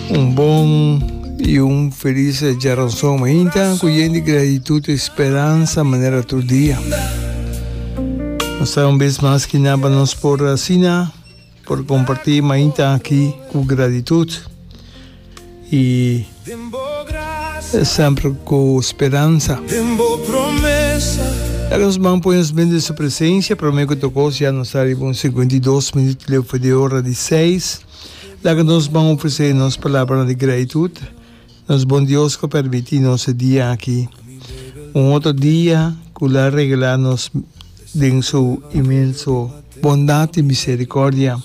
Un bon y un feliz Jaranson Mainta cu yen di gratitud y speranza manera tur dia. Nos ta un vez mas ki naba nos por asina por comparti Mainta aki cu gratitud y semper cu speranza. Ya nos man pone nos ben de su presencia, prome cu tocos ya nos ta riba un 52 minuto leu for di ora di 6. Laga nos ban ofresé nos palabranan di gratitud nos Bon Dios ku a permití nos e dia aki, un otro dia ku El a regalá nos den Su inmenso bondat i miserikordia.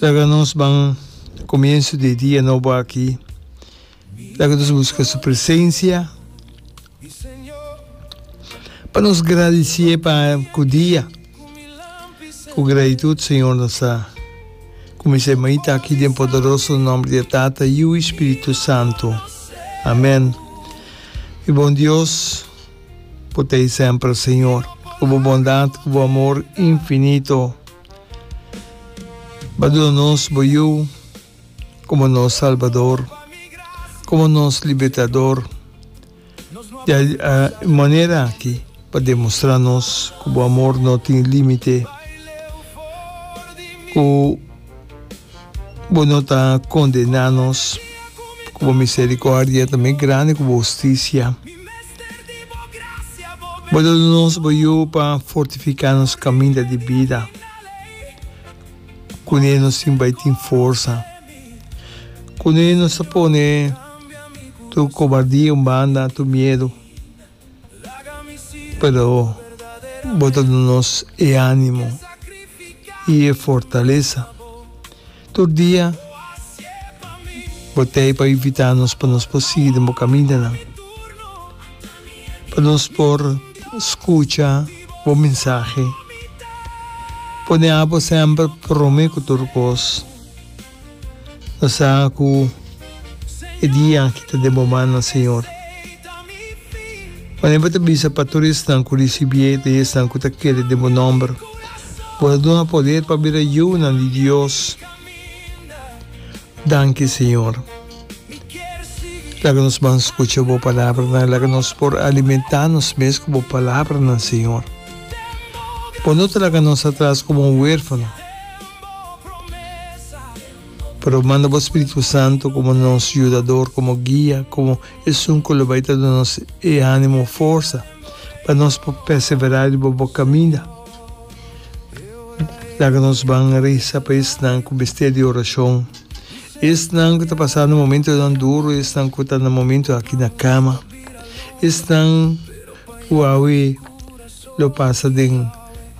Laga nos ban komienso di e dia nobo aki. Laga nos buska su presensia pa nos gradisié pa ku dia. Ku gratitud Señor nos ta kuminsá e mainta aki den poderoso nòmber di e Tata, Yiu i Spiritu Santu. Amèn. Mi bon Dios, bo ta ei semper Señor. Ku bo bondat, ku bo amor infinito, bo a duna nos bo Yiu. komo nos Salbador, komo nos Libertador. Di a e manera aki pa demostrá nos ku bo amor no tin límite, ku bo no ta kondená nos, ku bo miserikòrdia ta mi grandi ku bo hustisia. Bo ta duna nos bo yu pa fortifiká nos kaminda di bida. Kuné nos tin bai tin forsa. Kuné nos ta pone tur kobardia un banda, tur miedu. Pero bo ta duna nos e animo i e fortalesa. Tur dia bo t'ei pa invitá nos pa nos por sigui den bo kamindanan. pa nos por skucha bo mensahe. Pone abo semper prome ku tur kos. Nos sa ku e dia aki ta den bo mannan, Señor. Wanneer bo ta bisa pa tur esnan ku risibié den esnan ku ta kere den bo nòmber, bo ta duna poder pa bira yunan di Dios. Danki, Señor. Laga nos ban scucha bo palabranan, laga nos por alimenta nos mes cu bo palabranan, Señor. Bo no ta laga nos atras como un huérfano, pero manda bo Spiritu Santo como nos yudador, como guia, como Esun cu lo bai ta duna nos e animo, forsa, pa nos por persevera riba bo caminda. Laga nos ban reza pa esnan cu mester di oracion, Esnan ku ta pasando momentonan duru, esnan ku ta na momentu aki na kama, esnan ku awe lo pasa den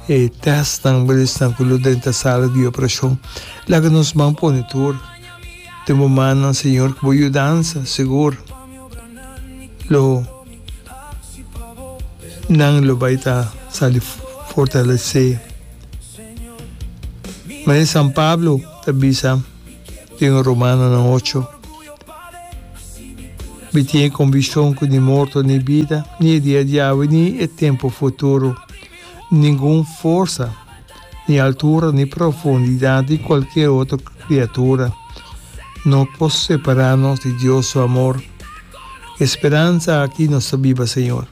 e tèstnan, bel esnan ku lo drenta sala di operashon, laga nos man pone tur den bo mannan, Señor, ku bo yudansa sigur lo nan lo bai ta sali fortalesé. Mari San Pablo ta bisa. den Romanonan ocho, Mi tin e conviccion cu ni morto ni bida, ni e dia di awe ni e tempo futuro, ningun forsa, ni altura ni profundidad di cualkier otro criatura, no por separa nos di Dios su amor. E speransa aki nos ta biba, Señor.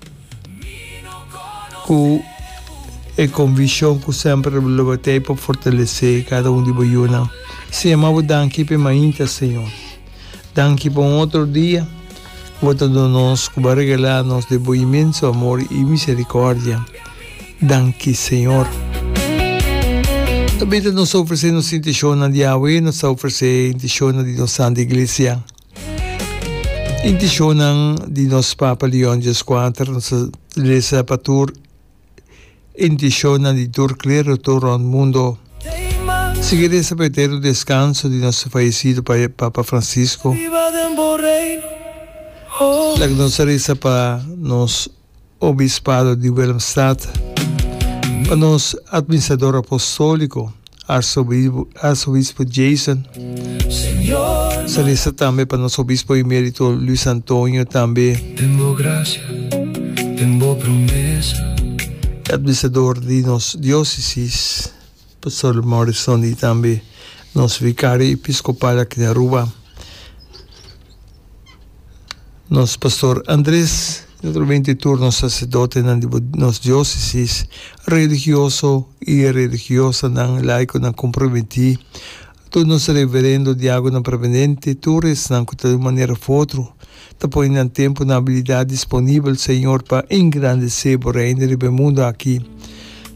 ku e konvishon ku semper bo lo batei pa fortalesé kada un di bo yunan. Señor, mi a bo danki p'e mainta, Señor. Danki pa un otro dia ku bo ta duna nos, ku bo a regalá nos den bo inmenso amor i miserikòrdia. Danki, Señor. Tambe nos ta ofresé nos intishonnan di awe, nos ta ofresé intishonnan di nos Santu Iglesia. Intishonnan di nos Papa Leon Djeskwater nos ta lesa pa tur intishonnan di tur klero tur rònt mundo. Sigui resa pa eterno deskanso di nos fayesido Papa Fransisko. Laga nos a resa pa nos. Obispado di Willemstad, pa nos Administrador Apostolico, Arzobispo Jason, salesa tambe pa nos Obispo Emerito Luis Antonio tambe, e Administrador di nos Diocesis. Pastor Morrison y tambe nos Vicario Episcopal aki na Aruba, nos Pastor Andres y otro veinte y tur nos Sacerdotenan di bo nos Diocesis, Religioso y Religiosanan, Laiconan comprometi, Tur nos reverendo, diágonan permanente, tur esnan ku ta di un manera òf otro ta pone nan tempu i nan abilidat disponibel, Señor, pa engrandesé Bo Reino riba e mundu aki.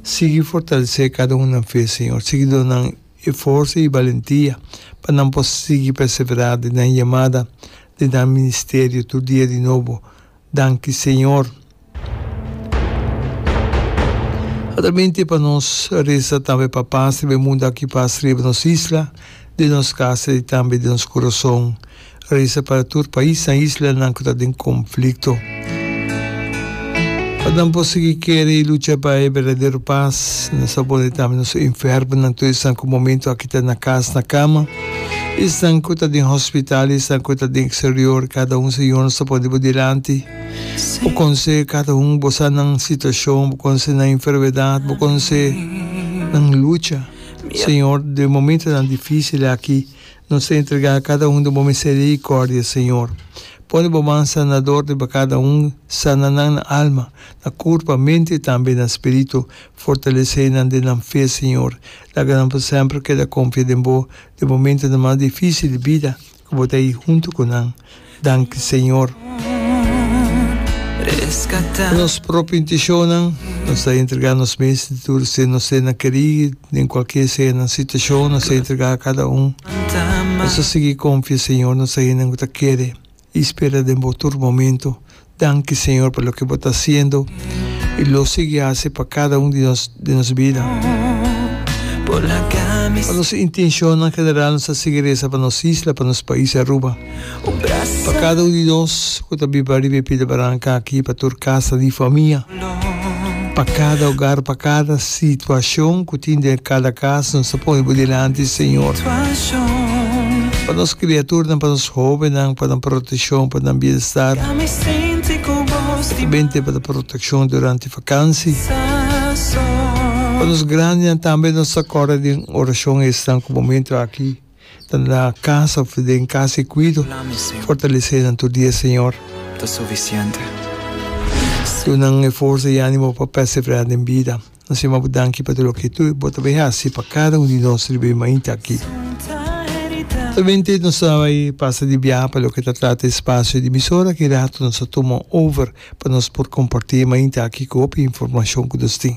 Sigui fortalesé kada un nan fe, Señor. Sigui duna nan e forsa i balentia pa nan por sigui perseverá den nan yamada, den nan ministerio tur dia di nobo, Danki Señor. Atramente pa nos resa tambe pa pas riba e mundu aki pas riba nos isla, den nos casa y tambe den nos corazon. Resa pa tur pais na isla nan cu ta den conflicto. Pa nan por sigui kere y lucha pa e berdadero pas. Nos a pone tambe nos enfermonan tur esan cu momento aki ta na cas na cama. Esnan ku ta den hospital i esnan ku ta den eksterior, kada un Señor nos ta pone bo dilanti. Bo konse kada un, bo sa nan situashon, bo konse nan enfermedat, bo konse nan lucha. Señor, den momentonan difísil aki, nos ta entregá kada un den bo miserikòrdia, Señor. Pone bo man sanador riba kada un, sana nan na alma, na kurpa, mente i tambe na spiritu. Fortalesé nan den nan fe, Señor. Laga nan por semper keda konfia den bo den momentonan mas difísil di bida, ku bo ta ahi huntu ku nan. Danki, Señor. Ku nos propio intishonnan, nos ta entregá nos mes di tur ser, nos ser na kerí den kualkier sea nan situashon, nos ta entregá kada un. Nos ta sigui konfia, Señor, nos ta hendenan ku ta kere I spera den bo tur momento. Danki Señor pa loke bo ta haciendo i lo sigui haci pa cada un di nos bida. Pa nos intencionnan general nos ta sigui reza pa nos isla, pa nos pais Aruba, pa cada un di nos cu ta biba riba e pida baranca aki, pa tur casa di famia. Pa kada ogar, pa kada situashon ku tin den kada kas, nos ta pone bo dilanti, Señor. Pa nos kriaturnan, pa nos hóbennan, pa nan proteshon, pa nan bienstar. Ta bende pa ta protekshon durante vakansi. Pa nos grandinan tambe nos ta kòrda den orashon esnan ku momentu aki. Ta na casa of ta den casa e cuido, fortalece nan tur dia Señor. Ta suficiente. Duna nan e forza y animo pa perseverar den bida. Nos yama bo danki pa tur loke tur bo ta bay haci pa cada un di nos riba e mainta aki. Solamente nos ta bay pasa di biaha pa loke ta trata espacio di emisora aki rato nos ta tuma over pa nos por comparti e mainta aki cu hopi informacion cu nos tin.